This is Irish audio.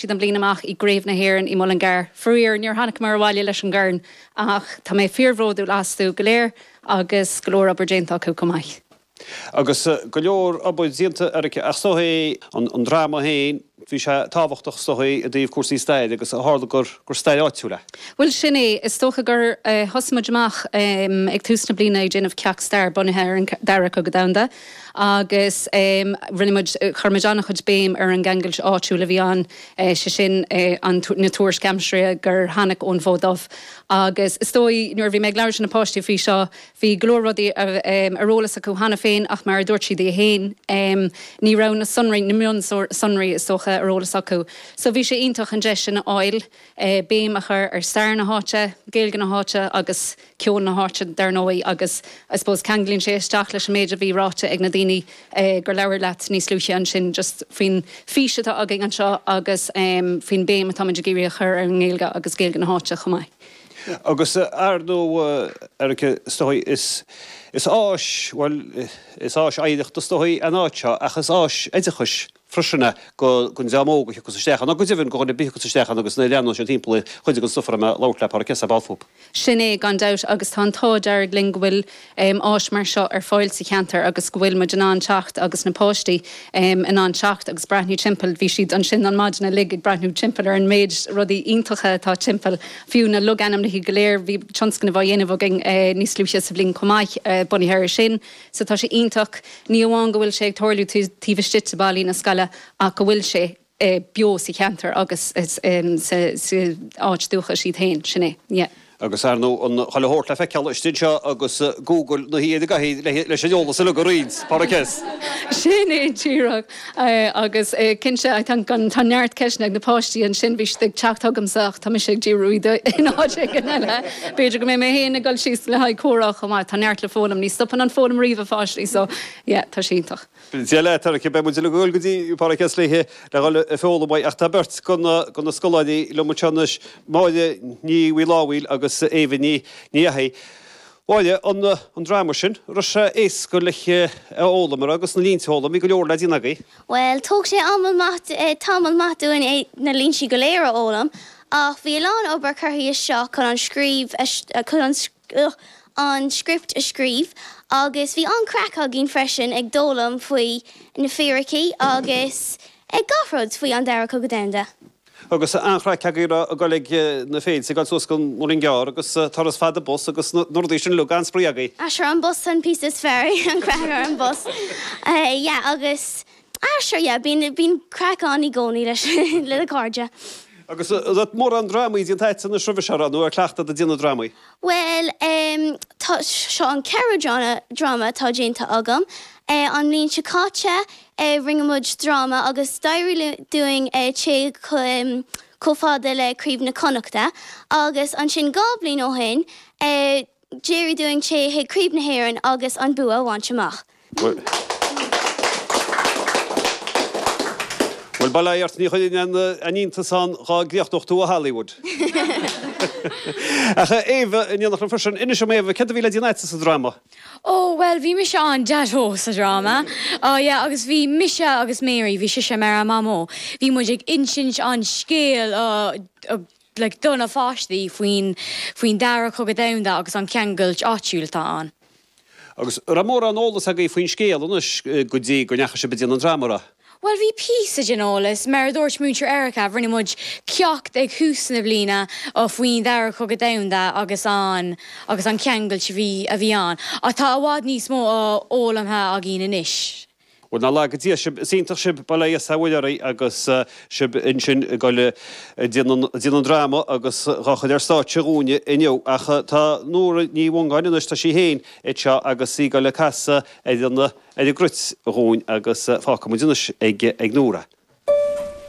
siad an bhliain amach i gCraobh na hÉireann i Mullingar. Faraor, níor tháiniceamar abhaile leis an gcorn ach tá mé fíor-bhródúil astu go léir agus go leor obair déanta acu chomh maith. Agus go leor obair déanta, Erica, is dóigh an dráma féin, bhí sé tábhachtach is dóigh i dtaobh cúrsaí staire agus ó tharla gur stair áitiúil é. Bhuel, sin é. Is dócha gur thosaigh muid amach ag tús na bliana ag déanamh ceacht stair bunaithe ar an Dara Cogadh Domhanda. agus rinne muid, chuir muid an-chuid béim ar an gceangal áitiúil a bhí ann, sé sin an, na tuairisc aimsire gur tháinig ón bhFód Dubh. Agus is dóigh, nuair a bhí mé ag labhairt le na páistí faoi seo, bhí go leor rudaí a, ar eolas acu cheana féin ach mar a dúirt siad féin, ní raibh na sonraí, na mionsonraí is dócha, ar eolas acu. So bhí sé iontach an deis sin a fháil béim a chur ar stair na háite, Gaeilge na háite agus. ceol na háite dar ndóigh agus I suppose ceanglaíonn sé isteach leis an méid a bhí ráite ag na daoine gur labhair leat níos luaithe ansin just faoin bhfís atá againn anseo agus faoin bhéim atáimid ag iarraidh a chur ar an nGaeilge agus Gaeilge na háite chomh maith. Agus ar ndóigh Erica, is dóigh is is áis bhuel is áis oidhreachta is dóigh an áit seo ach is áis oideachais freisin é, go, gon dream óg a thiocfas isteach ann, nó go deimhin go dhuine ar bith a thiocfas isteach ann agus na leanúna sin timpeall ar chuid den stuif a raibh mé ag labhairt le Pádraic S. ar ball fúb. Sin é gan dabht agus tá an t-ádh dearg linn go bhfuil áis mar seo ar fáil sa cheantar agus go bhfuil muid in ann teacht agus na páistí in ann teacht agus breathnú timpeall. Bhí siad ansin an maidin uilig ag breathnú timpeall ar an méid rudaí iontacha atá timpeall, fiú na logainmneacha go léir. Bhí tionscnamh á dhéanamh againn níos luaithe sa bhliain chomh maith bunaithe ar sin. so tá sé iontach, ní amháin go bhfuil sé ag tarlú taobh istigh de ballaí na scoile ach go bhfuil sé beo sa cheantar agus sa áit dúchais iad féin, sin é, yeah. Agus ar ndóigh chuile shórt le feiceáil istigh anseo agus Google na háite agaibh leis an eolas uilig a roinnt, Pádraic S. Sin é díreach. Agus cinnte, tá, tá neart ceisteanna ag na páistí ansin, bhí siad ag teacht chugamsa ach tá mise ag díriú iad in áit éigin eile. B'fhéidir go mbeidh mé féin ag dul síos le haghaidh comhrá chomh maith. Tá neart le foghlaim, ní stopann an foghlaim riamh, a pháistí, so yeah, tá sé iontach. Dia leat Erica, beidh muid uilig ag dul go dtí Pádraig S. le haghaidh le dhul ag foghlaim uaidh. Ach tá beirt go go na scoláirí liom anseo anois, Máire Ní Mhaolfhábhail agus Éabha Ní Ní Fhathaigh. Bhuel an an dráma sin. Raibh sé éasca leis é a fhoghlaim ar agus na línte a fhoghlaim. Bhí go leor le déanamh agaibh. Bhuel, thóg sé tamall maith dúinn na líntí go léir a fhoghlaim ach bhí a lán obair curtha isteach chun an scríobh a chun an uh an script a scríobh agus bhí an-craic againn freisin ag d'fhoghlaim faoi na fíricí agus ag gach rud faoi an Dara Cogadh Domhanda. Agus an-chraic agaibh ag goil ag na féilte, ag goil suas go Muileann gCearr agus turas fada bus agus na rudaí sin uilig, an-spraoi agaibh. Ah sure an bus an píosa is fearr, an craic ar an bus. Yeah agus ah sure yeah bíonn bíonn craic ann i gcónaí leis le na cairde. Agus an bhfuil mórán drámaí déanta a'tsa anois roimhe seo, nó an cleachtadh ag déanamh drámaí? Bhuel ehm tá, seo an ceathrú dráma dráma atá déanta agam an bhliain seo caite, é rinne muid dráma agus d'éirigh dúinn téigh chomh fada le Craobh na Connachta agus ansin dhá bhliain ó shin d'éirigh dúinn téigh chuig Craobh na hÉireann agus an bua a bhaint amach. Bhuel, ba léir ort, ní chuireann aon iontas orm dhá gcríochnódh tú i Hollywood. Ach, a Éabha, in éineacht liom freisin, inis dom, Éabha, céard a bhí le déanamh a'tsa sa dráma? Ó, bhuel, bhí mise an Daideo sa dráma. Á, yeah, agus bhí mise agus Mary, bhí sise mar an Mamó. Bhí muid ag insint an scéal, like, do na pháistí faoin, faoin Dara Cogadh Domhanda agus an ceangailt áitiúil atá ann. Agus, raibh mórán eolas agaibh faoin scéal anois go dtí go ndeachaigh sibh ag déanamh an dráma, raibh? Bhuel, bhí píosa den eolas, mar a dúirt Múinteoir Erika, rinne muid ceacht ag thús na bliana faoin Dara Cogadh Domhanda agus an agus an ceangailt a bhí a bhí ann, ach tá i bhfad níos mó a fhoghlamtha againn anois. Bhuel, nár laga Dia sibh, is iontach sibh, bail ó Dhia is ó Mhuire oraibh agus sibh ansin ag dul a déanamh a déanamh an dráma agus dhá chur ar stáitse dhúinne inniu. Ach tá Nóra Ní Mhongáin anois, tá sí féin anseo agus í ag dul a casadh ar an ar an gcruit dhúinn agus fágfaimid anois ag Nóra.